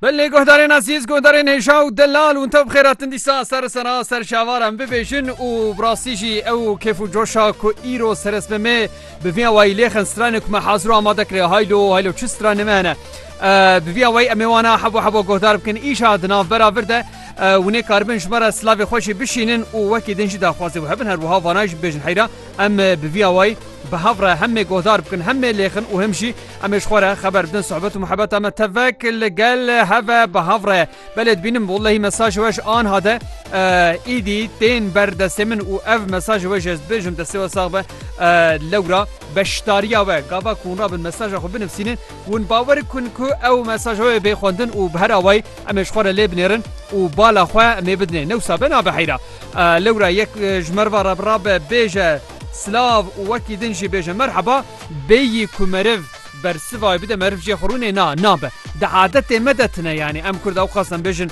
Belê guhdarên ezîz guhdarên hêja û delal hûn te bixêra tin dîsa ser sera ser şavar em bibêjin û birastî jî ew kêf û coşa ku îro seresmemê bi vî awayî lêxin stranê ku me haziro amade kiriye haylo haylo çi stranê me hene bi vî awayî em ê wana hebo hebo guhdar bikin îşa di navbera vir de hûnê karibin ji me re silavê xwe jî bişînin û wekî din jî daxwazê wê hebin her wiha vana jî bibêjin heyra em bi vî awayî bi hev re hemê guhdar bikin hemê lêxin û him jî Em ê ji xwe re xeber bidin sohbet û muhebeta me tevek li gel heve bi hev re. Belê dibînim wellehî mesajê we ji anha de êdî tên ber destê min û ev mesajê we jî ez dibêjim destê we sax be lewra beşdariya we gava ku hûn rabin mesaja xwe binivîsînin hûn bawer bikin ku ew mesaja wê bê xwendin û bi her awayî em ê ji xwe re lê binêrin û bala xwe em ê bidinê newsa be nabe heyra lewra yek ji merva re bi rabe bêje Silav û wekî din jî bêje merheba, bêyî ku meriv bersivayê bide meriv jê xwe rûnê na, nabe. Di adetê me de tine yanî em Kurd ewqas em bêjin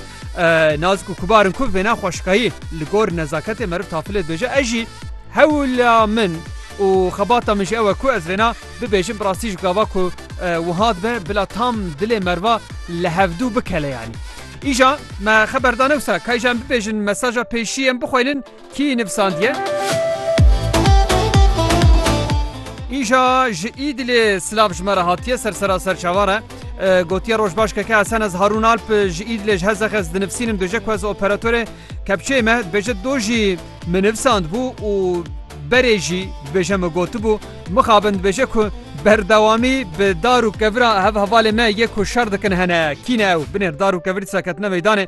nazik û kubar in ku vêna xweşikayî li gor nezaketê meriv tafilê dibêje. Ez jî hewla min û xebata min jî ew e ku ez vêna bibêjim bi rastî ji gava ku wiha dibe bila tam dilê meriva li hevdû bikele yanî. Îja me xeber da ne wisa, ka îja em bibêjin mesaja pêşî em bixwelin, Kî nivîsandiye? Îja ji Îdilê silav ji me re hatiye sersera serçavan re. Gotiye roj baş keke esen ez Harun Alp ji Îdilê ji hezex ez dinivîsînim dojê ku ez operatorê kepçeyê me dibêje do jî min nivîsand bû û berê jî dibêje min gotibû mixabin dibêje ku berdewamî bi dar û kevira hev hevalê me yê ku şer dikin hene kî ne ew binêr dar û kevir dîsa ketine meydanê.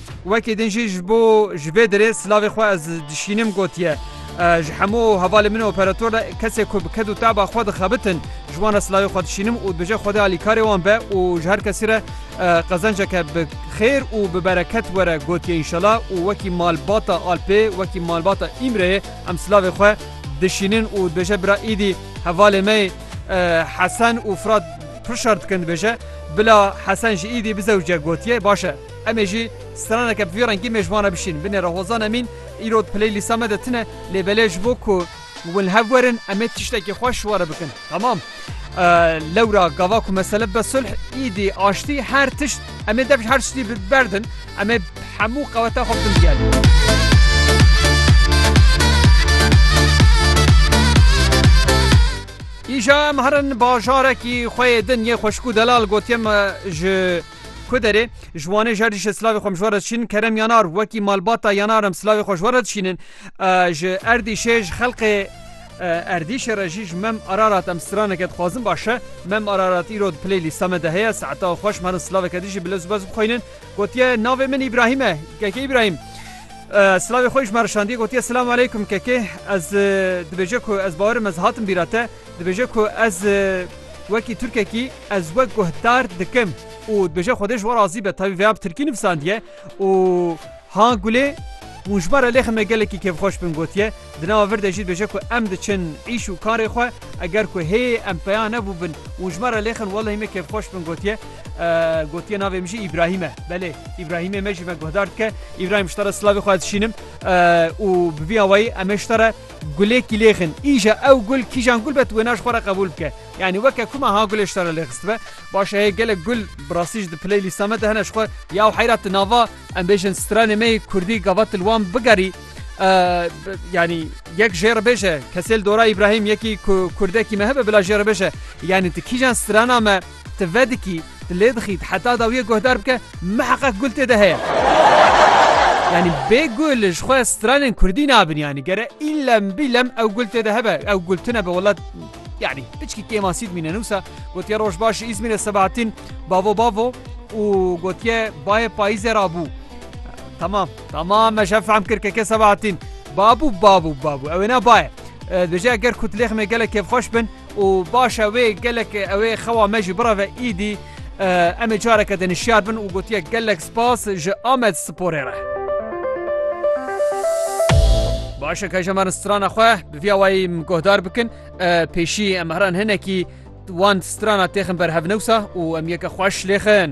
Wekî din jî ji bo ji vê derê silavê xwe ez dişînim gotiye, Ji hemû hevalên min operator re kesê ku bi ked û teba xwe dixebitin ji wan re silavê xwe dişînim û dibêje Xwedê alîkarê wan be û ji her kesî re qezenceke bi xêr û bi bereket were gotiye înşela û wekî malbata Alpê wekî malbata Îmreyê em silavê xwe dişînin û dibêje bira Îdî hevalê me yê Hesen û Firat pir şer dikin dibêje bila Hesen ji Îdî bizewce gotiye baş e. Em ê jî straneke bi vî rengî mêj vana bişîn. Binê re Hozan Emîn, Îro di playlîsta me de tune lê belê ji bo ku hûn li hev werin em ê tiştekî xweş ji we re bikin. Temam. Lewra gava ku mesele bibe sulh, îdî, aştî her tişt em ê dev ji her tiştî bi ber din. Em ê hemû qeweta xwe bikin diyar. Îja em herin bajarekî xwe yê din yê xweşik û delal gotiye me ji Ku derê, ji Wanê jer dişê silavê xwe mijwar re dişînin kerem yanar wekî malbata yanar em silavê xwe ji we re dişînin. Ji Erdîşê ji xelkê Erdîşê re jî ji Mem Ararat em straneke dixwazin baş e. Mem Ararat îro di play lîsta me de heye. Saetaw xweş me re silaveke din jî bi lez û bez bixwînin. Gotiye navê min Îbrahîm e. Keke Îbrahîm silavê xwe jî ji me re şandiye gotiye Silamu Eleykum kekê ez dibêje ku ez bawerim ez hatim bîra te. Dibêje ku ez wekî Tirkekî ez we guhdar dikim û dibêje Xwedê ji we razî be tevî vêya bi Tirkî nivisandiye û ha gulê hûn ji me re lêxin me gelekî kêfxweş bin gotiye di nava vir de jî dibêje ku em diçin îş û karê xwe eger ku hê em peya nebûbin hûn ji me re lêxin welehî me kêfxweş bin gotiye gotiye navê min jî Îbrahîm e belê Îbrahîmê me jî me guhdar dike Îbrahîm ji te re silavê xwe dişînim û bi vî awayî em ê ji te re Gulê kîlêxin, îja ew gul kîjan gul be tu wêna ji xwe re qebûl bike. Yanî weke ku me ha gulê ji te re lêxistibe. Baş e hê gelek gul bi rastî ji di playlîsta me de hene ji xwe ya û heyra tu nava em bêjin stranê me yê kurdî gava tu li wan bigerî yanî yek jê re bêje kesê li dora Îbrahîm yekî ku kurdekî me hebe bila jê re bêje yanî tu kîjan strana me Ti vedikî, ti lê dixît heta dawiyê guhdar bike miheqeq gul tê de heye. Yanî bê gul ji xwe stranên kurdî nabin yanî gere îlem bîlem ew gul tê de hebe ew gul tune be wela yanî piçkî kêmasî dimîne nûsa gotiye roj baş ji Îzmîrê Sebahatîn bavo bavo û gotiye bayê payîzê ra bû. Tamam tamam me şef fehm kir keke Sebahatîn babû babû babû ewêna baye. Dibêje eger ku tilêxmê gelek kêfxweş bin Û baş e wê gelek ew ê xewa me jî bireve îdî em ê careke din şiyar bin û gotiye gelek spas ji Amed Sporê re. Baş e ke ji me strana xwe bi vîya wayî min guhdar bikin pêşî em heran hinekî wan strana têxin berhev newsa û em yeke xweş lêxin.